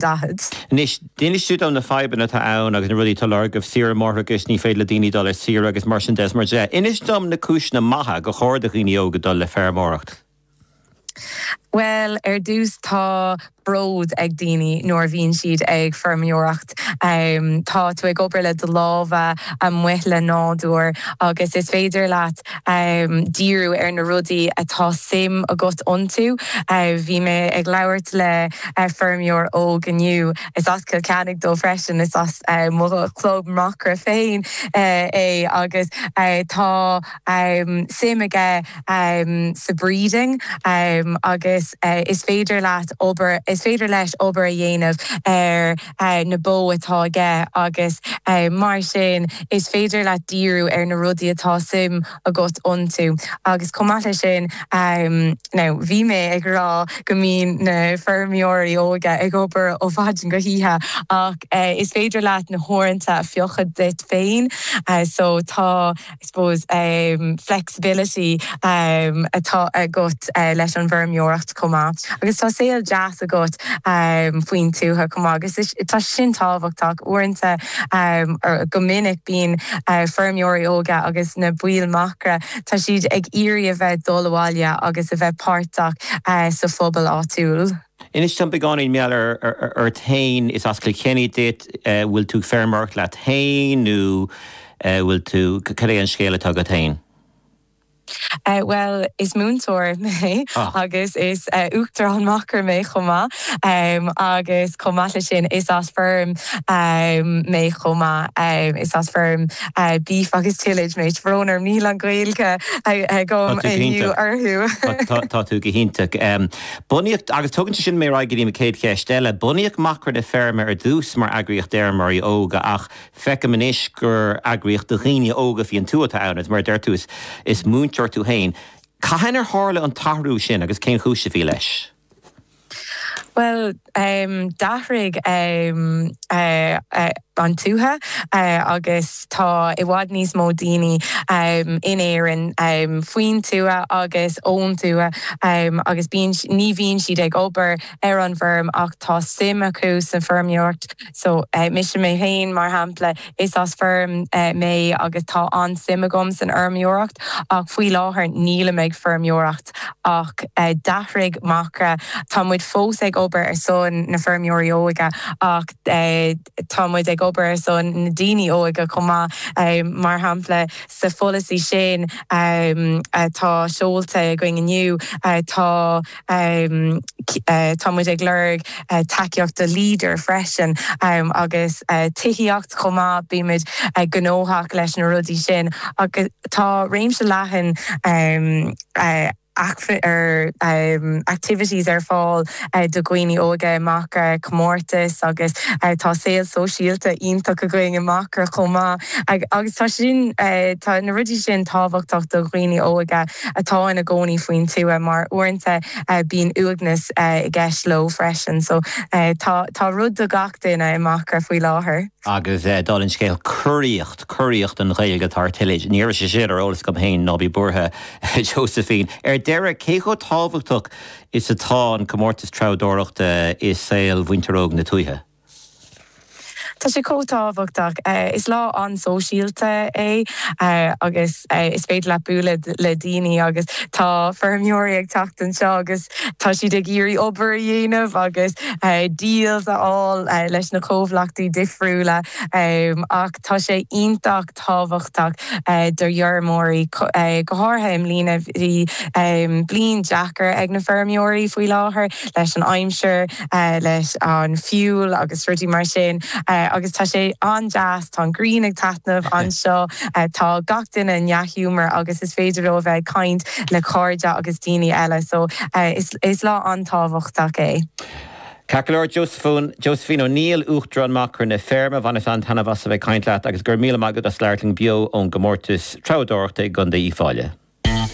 Anois, d'inis tú dúinn na fadhbanna atá ann agus na rudaí atá á lorg agaibh, saoire máithreachais, ní féidir le daoine dul ar saoire agus mar sin de is mar sin de. Inis dom na cúiseanna maithe gur chóir do dhaoine óga dul le feirmeoireacht? Bhuel, ar dtús tá bród ag daoine nuair a bhíonn siad ag feirmeoireacht. Tá tú ag obair le do lámha, amuigh le nádúr agus is féidir leat díriú ar na rudaí atá suim agat iontu. Bhí mé ag labhairt le feirmeoir óg inniu, is as Cill Chainnigh dó freisin, is as mo chlub Macra féin é agus tá suim aige sa breeding agus is féidir leat, is féidir leis obair a dhéanamh ar. na bó atá aige agus mar sin is féidir leat díriú ar na rudaí atá suim agat iontu agus chomh maith le sin now bhí mé ag rá go mbíonn na feirmeoirí óga ag obair ó mhaidin go hoíche ach is féidir leat na huaireanta a phiocadh duit féin so tá I suppose flexibility atá agat leis an bhfeirmeoireacht chomh maith agus tá saol deas agat faoin tuath chomh maith agus tá sin tábhachtach. Uaireanta, go minic bíonn feirmeoirí óga agus na baill macra, tá siad ag iarraidh a bheith ag dul abhaile agus a bheith páirteach sa phobal áitiúil. Inis dom beagáinín mar gheall ort fhéin. Is as Cill Chainnigh duit. Bhfuil tú ag feirmeoireacht leat fhéin nó bhfuil tú, cén é an scéal atá agat fhéin? Bhuel, is múinteoir mé agus is Uachtarán Macra mé chomh maith agus chomh maith le sin is as feirm mé chomh maith. Is as feirm beef agus tillage mé. Brón orm, níl an Ghaeilge agam inniu orthu. Tá tú go hiontach. Bunaíodh, agus tugann sé sin mé ar aghaidh go dtí mo chéad cheist eile, bunaíodh Macra na Feirme ar dtús mar eagraíocht d'fheirmeoirí óga ach feicim anois gur eagraíocht do dhaoine óga faoin tuath atá ann agus mar a deir tú is múinteoir tú féin. Cathain ar tharla an t-athrú sin agus cén chúis a bhí leis? Bhuel, D'athraigh an tuath agus tá i bhfad níos mó daoine in Éirinn faoin tuath agus ón tuath agus ní bhíonn siad ag obair ar an bhfeirm ach tá suim acu san fheirmeoireacht. So mise mé féin mar shampla, is as feirm mé agus tá an-suim agam san fheirmeoireacht ach faoi láthair nílim ag feirmeoireacht. Acht ach d'athraigh Macra. Tá muid fós ag obair ar son na feirmeoirí óga ach tá muid ag obair ar son na daoine óga chomh maith. Mar shampla, sa pholasaí sin atá seolta againn inniu tá, tá muid ag lorg. tacaíocht do leader freisin agus tithíocht chomh maith bímid gnóthach leis na rudaí sin agus tá réimse leathan activities ar fáil do dhaoine óige i Macra, comórtas agus tá saol sóisialta iontach againn i Macra chomh maith agus tá sin tá na rudaí sin tábhachtach do dhaoine óige. atá ina gcónaí faoin tuath mar uaireanta bíonn uaigneas i gceist leo freisin. So tá tá rud do gach duine i Macra faoi láthair. Agus d'fháil an scéal curaíocht, curaíocht an Ghaeilge atá ar tillage, ní raibh sé sin ar eolas agam fhéin ná bí buartha Josephine. Ar deireadh, cé chomh tábhachtach is atá an comórtas treabhdóireachta i saol mhuintir óg na tuaithe? Tá sé chomh tábhachtach. Is lá an-sóisialta é agus is féidir leat bualadh le daoine agus tá feirmeoirí ag teacht anseo agus tá siad ag iarraidh obair a dhéanamh agus deals a fháil leis na comhlachtaí difriúla ach tá sé iontach tábhachtach d'fheirmeoirí, go háirithe i mbliana. Bhí bliain deacair ag na feirmeoirí faoi láthair leis an aimsir, leis an fuel agus rudaí mar sin agus tá sé an-deas, tá an ghrian ag taitneamh anseo, tá gach duine i ndea-ghiúmar agus is féidir leo a bheith ag caint le cairde agus daoine eile. So is lá an-tábhachtach é. Ceart go leor, Josephine, Josephine O'Neill, Uachtarán Macra na Feirme, bhaineas an-taitneamh as a bheith ag caint leat agus go raibh míle maith agat as labhairt linn beo ón gComórtas Treabhdóireachta i gContae Uíbh Fhailí.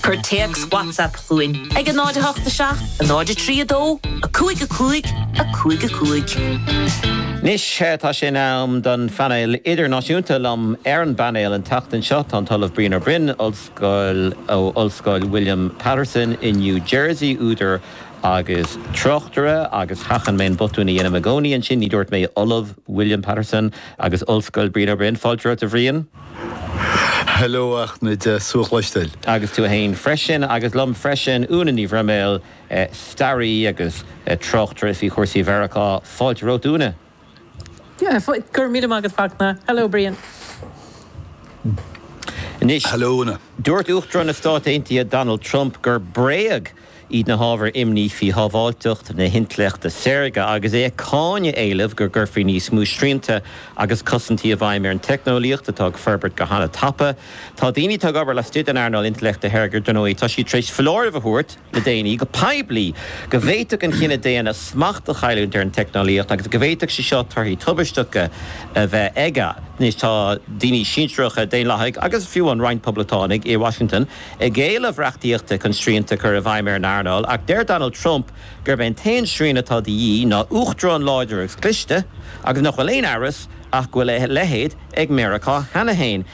Cuir téacs WhatsApp chugainn ag 08 7 0 3 2 5 5 5 5. Anois tá sé in am don phainéal idirnáisiúnta. Liom ar an bpainéal an tseachtain seo tá an tOllamh Brian Ó Broin, Ollscoil ó Ollscoil William Paterson i New Jersey, údar agus tráchtaire agus sheachain mé an botún a dhéanaim i gcónaí ansin, ní dúirt mé ollamh William Paterson agus ollscoil Brian Ó Broin, fáilte romhat a Bhriain. Hello a Fhachtna, tá súil agam go bhfuil tú slán. Agus tú fhéin freisin, agus liom freisin Úna Ní Bhroiméil, staraí agus tráchtaire faoi chúrsaí Mheiriceá, fáilte romhat Úna. Go raibh míle maith agat Fachtna. Hello Brian. Hello Úna. Dúirt Uachtarán na Stát Aontaithe Donald Trump gur bréag iad na hábhair imní faoi shábháilteacht na hintleachta saorga agus é ag cáineadh éilimh go gcuirfí níos mó srianta agus cosaintí i bhfeidhm ar an teicneolaíocht atá ag forbairt go han-tapa. Tá daoine atá ag obair laistigh den earnáil intleachta shaorga, dar ndóigh, tá siad tar éis foláireamh a thabhairt. le déanaí go poiblí go bhféadfadh an chine daonna smacht a chailliúint ar an teicneolaíocht agus go bhféadfadh sé seo torthaí tubaisteacha a bheith aige. Anois tá daoine sinsearacha, Daonlathaigh agus fiú roinnt Poblachtánaigh i Washington, ag éileamh reachtaíochta chun srianta a chur i bhfeidhm ar an earnáil ach deir Donald Trump gurb é an t-aon srian atá de dhíth ná Uachtarán láidir agus cliste agus nach bhfuil aon amhras Ach go bhfuil a leithéid ag Meiriceá cheana féin.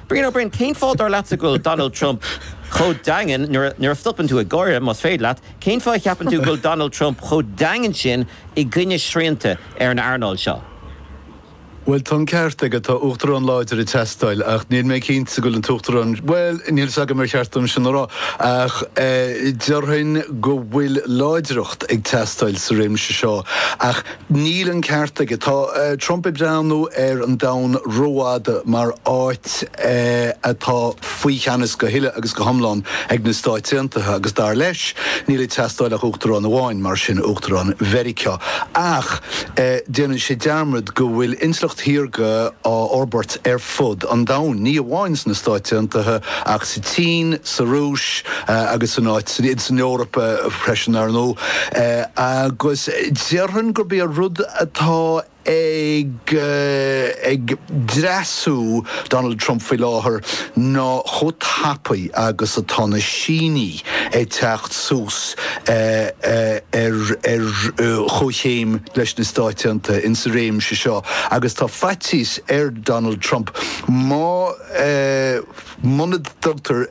Brian Ó Broin, cén fáth dar leatsa go bhfuil Donald Trump chomh daingean, nuair a stopann tú ag gáire, más féidir leat, cén fáth a cheapann tú go bhfuil Donald Trump chomh daingean sin i gcoinne srianta ar an earnáil seo? Bhuel, tá an ceart aige, tá uachtarán láidir ag teastáil ach níl mé cinnte go bhfuil an t-uachtarán, bhuel, níl fhios agam ar cheart dom sin a rá ach déarfainn go bhfuil láidreacht ag teastáil sa réimse seo ach Níl an ceart aige. Tá Trump ag breathnú ar an domhan rófhada mar áit atá faoi cheannas go huile agus go hiomlán ag na Stáit Aontaithe agus dar leis, níl ag teastáil ach Uachtarán amháin, mar sin, Uachtarán Mheiriceá. Ach déanann sé dearmad go bhfuil intleacht shaorga á forbairt ar. fud an domhain, ní amháin sna Stáit Aontaithe ach sa tSín, sa Rúis agus san san Eoraip freisin, ar ndóigh, agus déarfainn gurb é rud atá ag ag dreasú Donald Trump faoi láthair ná chomh tapaidh agus atá na Sínigh. ag teacht suas ar chomhchéim leis na Stáit Aontaithe insa réimse seo agus tá faitíos ar Donald Trump má muna dtugtar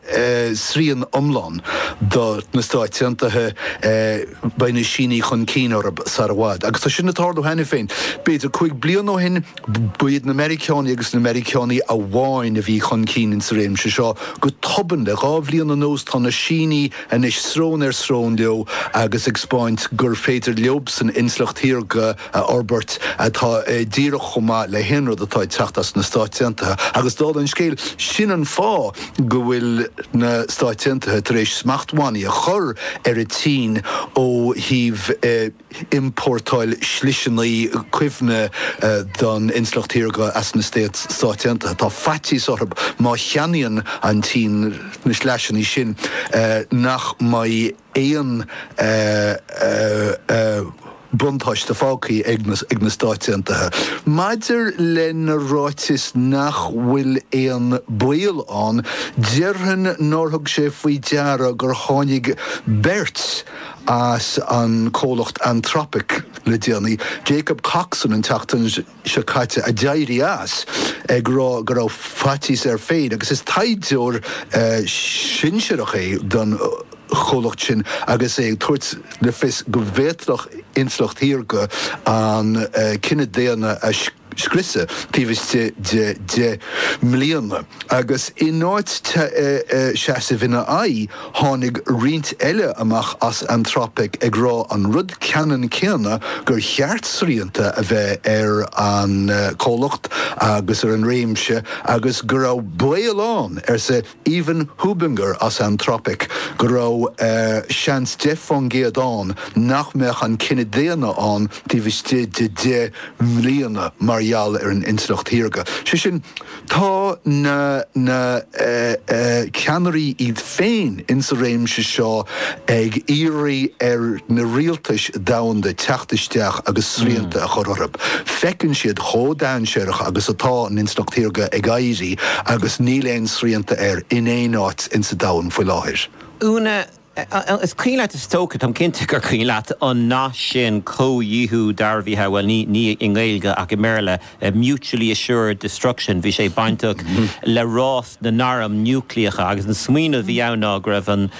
srian iomlán do na Stáit Aontaithe beidh na Sínigh chun cinn orthu sar i bhfad agus tá sin ag tarlú cheana féin. B'fhéidir cúig bliana ó shin, Ba iad na Meiriceánaigh agus na Meiriceánaigh amháin a bhí chun cinn insa réimse seo. Go tobann, le dhá bhliain anuas, tá na Sínigh anois srón ar srón leo agus ag 'speáint gur féidir leobsan intleacht shaorga a fhorbairt atá díreach chomh maith le haon rud atá ag teacht as na Stáit Aontaithe. Agus dála an scéil, sin an fáth go bhfuil na Stáit Aontaithe tar éis smachtbhannaí a chur ar an tSín ó thaobh iompórtáil sliseanna cuimhne don intleacht shaorga as na Stáit Aontaithe. Tá faitíos orthu, má cheannaíonn an tSín na sliseanna sin, nach mbeidh aon bhuntáiste fágtha ag na Stáit Aontaithe. Maidir lena ráiteas nach bhfuil aon baol ann, déarfainn nár thug sé faoi deara gur tháinig beirt as an comhlacht Anthropic le déanaí, Jacob Coxon an tseachtain seo caite, a d'éirigh as, ag rá go raibh faitíos air féin agus is taighdeoir sinsearach é don chomhlacht sin agus é ag tabhairt le fios go bhféadfadh intleacht shaorga an chine daonna a scriosadh taobh istigh de deich mbliana agus i in áit seasamh ina aghaidh tháinig roinnt eile amach as Anthropic ag rá an rud ceannann céanna gur cheart srianta a bheith ar an comhlacht agus ar an réimse agus go raibh baol ann, arsa Evan Hubinger as Anthropic go raibh seans 10% ann nach mbeadh an cine daonna ann taobh istigh de 10 mbliana mar gheall ar an intleacht shaorga. Sé sin, tá na na ceannairí iad féin insa réimse seo ag iarraidh ar na rialtais domhanda teacht isteach agus srianta a chur orthu. Feiceann siad chomh dainséarach agus atá an intleacht shaorga ag éirí agus níl aon srianta air in aon áit sa domhan faoi láthair. Úna, Is cuimhin leat, is dócha, táim cinnte gur cuimhin leat an nath sin 'comhdhíothú dearbhaithe', bhuel ní i nGaeilge ach i mBéarla, mutually assured destruction. Bhí sé bainteach le rás na n-arm núicléacha agus an smaoineamh a bhí ann ná go raibh an,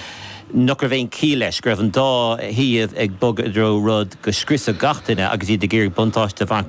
nach raibh aon chiall leis, go raibh an dá thaobh ag bogadh i dtreo rud go scriosfadh gach duine agus iad ag iarraidh buntáiste a bhaint as.